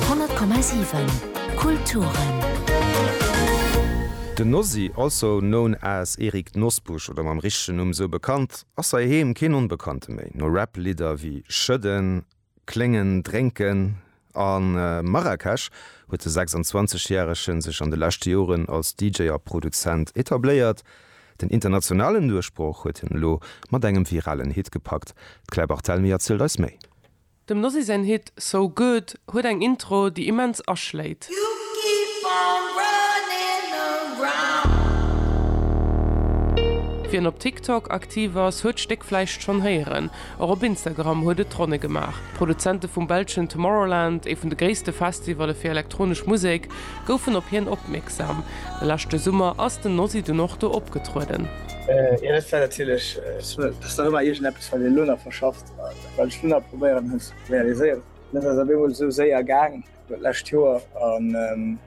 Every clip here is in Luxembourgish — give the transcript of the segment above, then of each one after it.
100,7 Kulturen. Den Nosy, also known as Erik Nosbusch oder mam richtegen Numm esou bekannt, ass hei heem keen Onbekannte méi. No Rap-Lidder wéi Schëdden, Kléngen, Drénken a Marrakesch huet de 26 järege sech an de leschte Joren als DJ a Produzent etabléiert. Den internationalen Duerchbroch huet hien elo mat engem viralen Hit gepackt. D'Claire Barthelmy erzielt eis méi. Dem Nossi säin Hit So Good huet eng Intro, déi immens aschléit. Wien op TikTok aktiv ass, huet d'Stéck vläicht schonn héieren. Och op Instagram huet et d'Ronne gemaach. D'Produzente vum belschen Tomorrowland, ee vun de gréisste Festivalle fir elektronesch Musek, goufen op hien opmierksam. De leschte Summer ass den Nossi dunn och do opgetrueden. Ech war natierlech. Ass nach ëmmer iergendeppes, wat een elo nach verschafft. Wat ech dunn awer probéieren hunn ze realiséieren, dat ass op eemol esou séier gaang d'lescht Joer an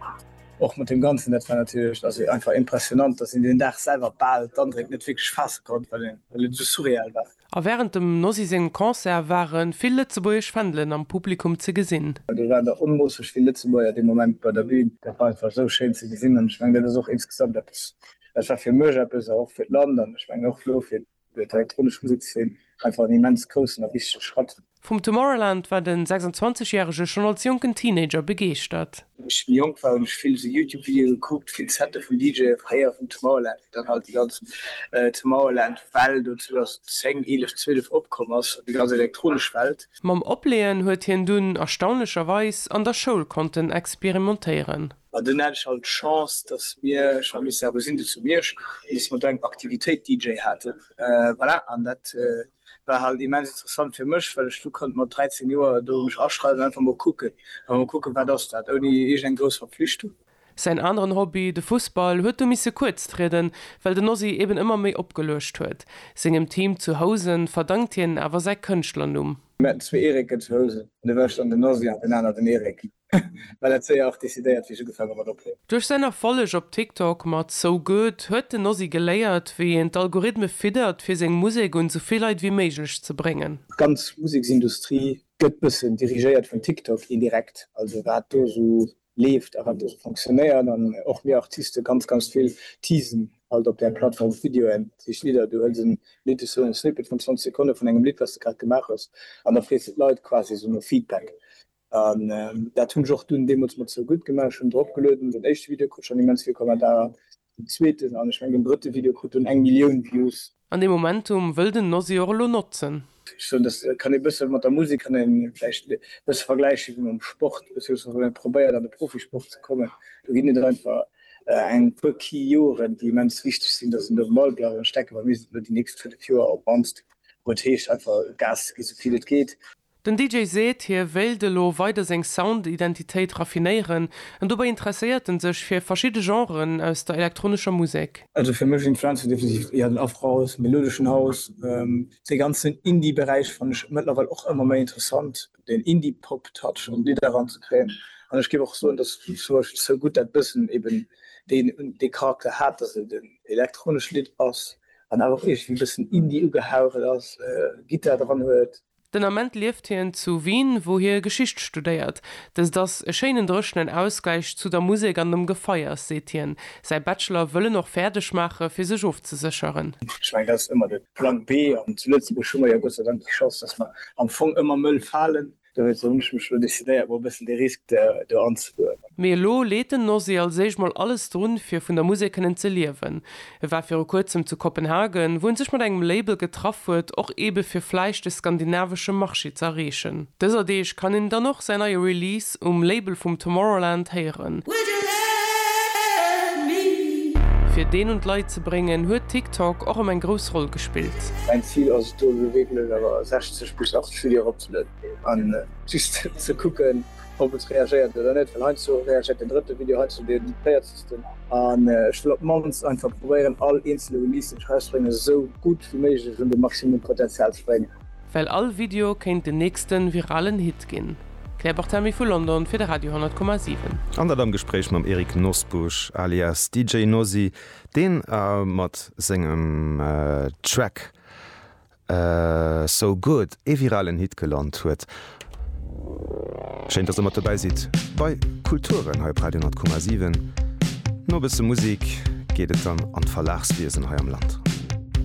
och mat deem Ganzen, dat war natierlech also einfach impressionnant, dass een deen Dag selwer bal d'Andréck net wierklech faasse konnt, well et esou surreal war. A wärend dem Nosy sengem Concert ware vill lëtzebuergesch Fändelen am Publikum ze gesinn. Do waren der onmoosseg vill Lëtzebuerger dee Moment bei der Bün. Dat war einfach esou schéin ze gesinn an ech mengen, dat ass och insgesamt eppes, dat war fir mech eppes a och fir d'Land an ech mengen och elo fir Fir d'elektronesch Musekszeen einfach en immens groussen a wichtege Schratt. Vum Tomorrowland war den 26 Järege schonn als jonken Teenager begeeschtert. Wou ech méi jonk war hunn ech vill esou Youtube Videoe gekuckt, vill Sette vun DJe veréiert vum Tomorrowland, wéi dann halt déi ganz Tomorrowland Well do 2010, 11, 12 opkomm ass, déi ganz elektronesch Welt. Mam Opleeën huet hien dunn erstaunlecherweis an der Schoul konnten experimentéieren. An dunn hat ech halt d'Chance, dass mir, ech war Mister Abesinde zu Miersch, an dass mer do eng Aktivitéit DJ haten. Voilà, an dat war halt immens interessant fir mech, well ech du konnt mat 13 Joer do mech aschreiwen an einfach mol kucken, einfach mol kucken, wat ass dat, ouni iergend eng grouss Verpflichtung. Säin aneren Hobby, de Fussball, huet du misse kuerz trieden, well den Ozzy eben ëmmer méi opgeluecht huet. Sengem Team zu Housen verdankt hien awer säi Kënschtlernumm. Mir haten zwee Erike zu Housen, an da war ech dann den Ozzy an den aner den Erik. Well et séier och decidéiert wéi ech ugefaange mat ophuelen. Duerch säin Erfolleg op TikTok mat So Good huet den Ozzy geléiert wéi een d'Algorithme fiddert fir seng Musek un sou vill Leit wéi méiglech ze bréngen. D'ganz Museksindustrie gëtt bëssen dirigéiert vun TikTok indirekt, also wat do sou leeft a wat do sou fonctionnéiert an och mir Artiste ganz ganz vill teasen halt op där Plattform op Videoen, dat heescht Lidder, du hëls en Lidd, esou en Snippet vun 20 Sekonne vun engem Lidd wat s de grad gemaach hues an da frees de d'Leit quasi esou no Feedback. An dat hunn ech och dunn deemools mat Sou gutt gemaach. Ech hunn drop gelueden. Den éischte Video krut schonn immens vill Kommentarer, den zweeten an ech mengen den drëtte Video krut dunn eng Millioun Views. An dee Momentum wëll den Nosy och elo notzen. Ech soen, dass kann ee bësse mat der Musek kann ee vläicht e bësse vergläiche wéi mam Sport, beziéiungsweis wann ee probéiert an de Profisport ze kommen. Do ginn et einfach eng puer Key Joren, déi immens wichteg sinn, dass een do um Ball bleift. An ech denken, bei mir sinn et elo déi nächst fënnef Joer op d'mannst, wou et heescht einfach Gas ze ginn, esou vill et geet. Den DJ seet, hie wéilt elo weider seng Sound-Identitéit raffinéieren an dobäi interesséiert en sech fir verschidde Genren aus der elektronescher Musek. Also fir mech influenzt hien definitiv eher den Afrohouse, melodeschen House. Dee ganzen Indie-Beräich fannen ech mëttlerweil och ëmmer méi interessant, deen Indie-Pop-Touch an d'Lidder eranzekréien. An ech géif och soen, datt zum Beispill So Good dat bëssen eben dee Charakter hat, datt et en elektronescht Lidd ass an awer och iergendwéi e bëssen Indie ugehaucht ass, Gittar dran huet. Den Ament lieft hien zu Wien, wou hie Geschicht studéiert. Dëst ass e schéinen dréchenen Ausgläich zu der Musek an dem Gefeiers, seet hien. Säi Bachelor wëll en och fäerdeg maache fir sech ofzesécheren. Ech mengen, dat ass ëmmer de Plan B. An zu Lëtzebuerg hu mer jo Gott sei Dank déi Chance, datt mer am Fong ëmmer Mëll falen. Dowéinst hunn ech mech elo decidéiert, mol e bëssen de Risk do anzegoen. Mee elo leet den Nosy als éischt mol alles drun, fir vun der Musek kënnen ze liewen. E war viru kuerzem zu Kopenhagen, wou en sech mat engem Label getraff huet, och eebe fir vläicht de skandinavesche Marché ze erreechen. Dëser Deeg kann een dann och säin neie Release um Label vum Tomorrowland héieren. Fir deen un d'Leit ze bréngen, huet TikTok och ëm eng grouss Roll gespillt. Mäin Zil ass et do gewierklech awer 60 bis 80 Videoen eropzelueden an just ze kucken, ob et reagéiert oder net, well heiansdo reagéiert den drëtte Video, heiansdo den véierzegsten an ech wëll op d'mannst einfach probéieren all eenzele Release deen ech erausbréngen esou gutt wéi méiglech un de Maximum Potenzial ze bréngen. Well all Video kéint den nächsten viralen Hit ginn. Claire Barthamy vu London fir de Radio 10,7. An dat am Gespréich mam Eric Nosbusch alias DJ Nosy, deen mat sengem Track So Good ee viralen Hit gelant huet. Schéin dass der mat dobäi sidd bei Kulturen hei op Radio 10,7. No e bësse Musik geet et dann an d'Verlagswiesen hei am Land.